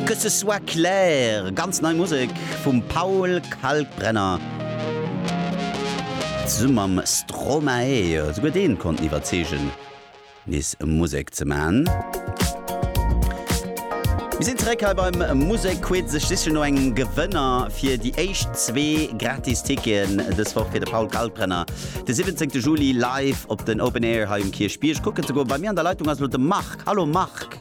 Que ce soit clair, ganz nei Musek vum Paul Kalkbrenner zesumme mam Stromae. Souguer dee konnt en iwwerzeegen, nees Musek ze maachen. Mir sinn zeréck hei beim Musekquiz. Ech sichen no engem Gewënner fir déi éischt zwee gratis Ticketen dës Woch fir de Paul Kalkbrenner de 17 Juli live op den Open Air hei um Kierchbierg kucken ze goen. Bei mir an der Leitung ass elo de Marc. Hallo Marc.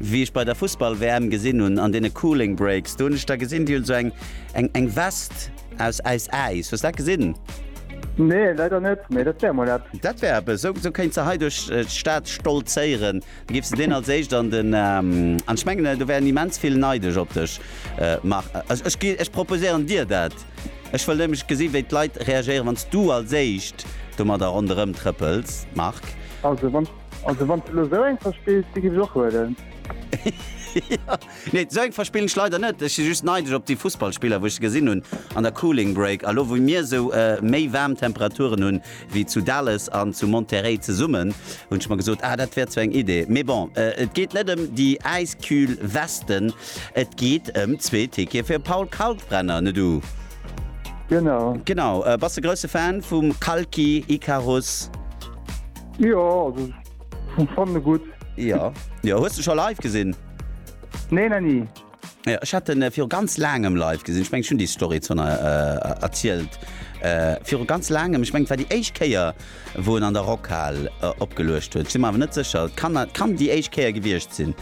Wéi ech bei der Fussball WM gesinn hunn an deene Cooling Breaks, do hunn ech der gesinn, déi huet esou eng eng Vest aus aus Äis. Hues dat gesinn? Nee, leider net, mee dat wär mol eppes. Dat wär eppes, esou esou kéints de hei duerch d'Stad stolzéieren, da giffs de deen als éischt an den an ech mengen do wären immens vill neidesch op dech Marc. Also ech gi ech proposéieren dir dat, ech wëll nämlech gesi wéi d'Leit reagéieren wann s du als éischt domadder ronderëm trëppels Marc. Also wann. Also wann du so eng verspills, die gif och huelen. nee, seng verspillen ech leider net. Ech si just neideg op déi Fussballspiller, wou ech se gesinn hunn an der Cooling Break. A lo wou mir esou méi waarm Temperaturen hunn wéi zu Dallas an zu Monterrey zesummen, hunn ech mer gesot, ah dat wär zwar eng Idee. Mee bon, et geet net ëm déi äiskühl Westen, et geet ëm zwee Tickete fir Paul Kalkbrenner, ne du? Genau. Genau. Bass de grousse Fan vum Kalki, Icarus? Jo also hun fanne gutt. Ja Jo hues du scho live gesinn? Nee na nie. Ja, ech hat den äh, fir ganz langem live gesinn. Ich meng schon die Story zu äh, erzielt. Äh, fir ganz langem ich meng war die Eichkeier wo en an der Rockhall äh, opgelucht huet. Si awer net secher. Kann, kann die Eichkeier gewircht sinn.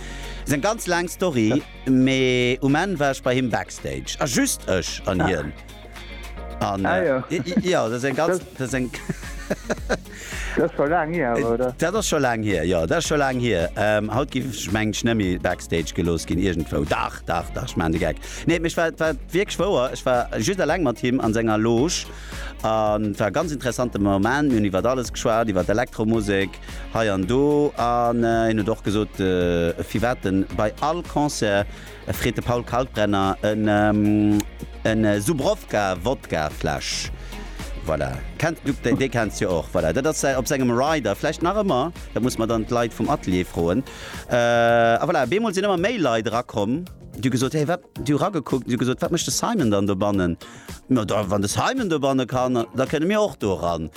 Se ganz lang Story ja. me um Enn war ich bei him Backstage. A ah, just ech an ja. hien. An, ah, ja. Äh, ja, das eng ganz das eng Dat scho lang hier äh, oder? Dat ass scho lang hier ja dat scho lang hier ähm, haut gi meng Schnëmmi Backstage gelos ginn irgendwo Dach Dach Dach man de geck Nee mech war war wiek schwouer Ech war just allng mat him an senger Loge an war ganz interessante Moment hun iwwer alles geschwar iwwer d Elektromusik hei an do an äh, hin äh, doch gesot äh, fi wetten bei all Konzer. freet de Paul Kalkbrenner. E Zubrowka Wodkafläsch, voilà, kennt du, dee kenns du jo och, voilà, dat ass säi, op sengem Rider vläicht nach ëmmer, dat muss mer dann d'Leit vum Atelier froen. A voilà, op eemol sinn ëmmer méi Leit erakomm, déi hu gesot, Hey, wat, déi hu eragekuckt an déi hu gesot, Wat mécht de Simon dann dobannen? Ma da, wann de Simon dobanne kann, da kënne mir och do eran.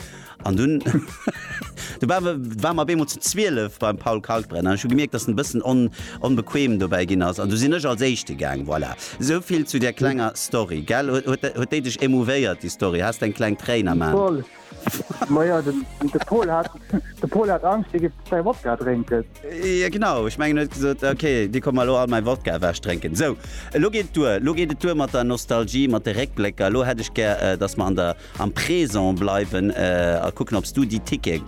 An dunn du war war mer beemol ze 12 beim Paul Kalkbrenner. Ech hu gemierkt, datt en bëssen on onbequem dobäi ginn ass. An du sinn ech als Éischte gaang. Voilà. Esou vill zu där klenger Story, gell? Huet huet huet déi dech émouvéiert, déi Story? Has de eng kleng Tréin am Aen? Voll. Ma jo, den de Paul hat de Paul hat Angscht, dee géif säi Wodka drénken. Jo, genau. Ech mengen, en huet gesot, Okay, dir kommt mer elo all mäi Wodka ewech drénken. Sou, elo geet et duer. Elo geet et duer mat der Nostalgie, mat de Réckblécker. Elo hätt ech gär, datt mer an der. Am Présent bleiwen a kucken obs du déi Ticket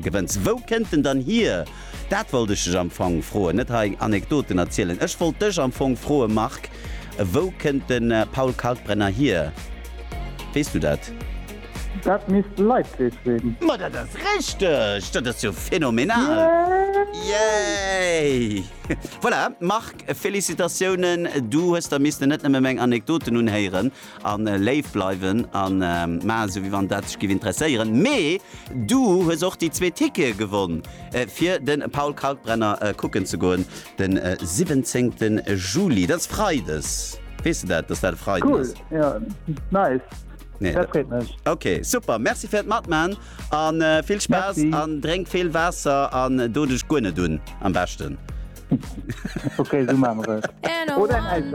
gewënns. Wou kënnt en dann hier? Dat wollt ech dech am Fong froen, net hei Anekdoten erzielen. Ech wollt dech am Fong froe Marc, wou kënnt de Paul Kalkbrenner hier? Weess du dat? Dat misst Leipzig sinn. Ma dat ass richteg! Dat ass jo phenomenal! Yay! Voilà Marc, Félicitatiounen, du hues der missten net nëmme meng Anekdoten unhéieren, A léif bleiwen a maachen esou wéi wann dat dech giff interesséieren. Mee du hues och déi zwee Tickete gewonn fir de Paul Kalkbrenner kucken ze goen de 17 Juli. Dat ass Freides. Weess de dat, dass dat e Freiden ass? Cool, jo nice. Dat freet mech. Ok super, Merci fir d'Matman a vill Spaass an drénk vill Waasser an do dech guer net un am beschten. Ok, esou maache mer et. Oder eng Äiskräm.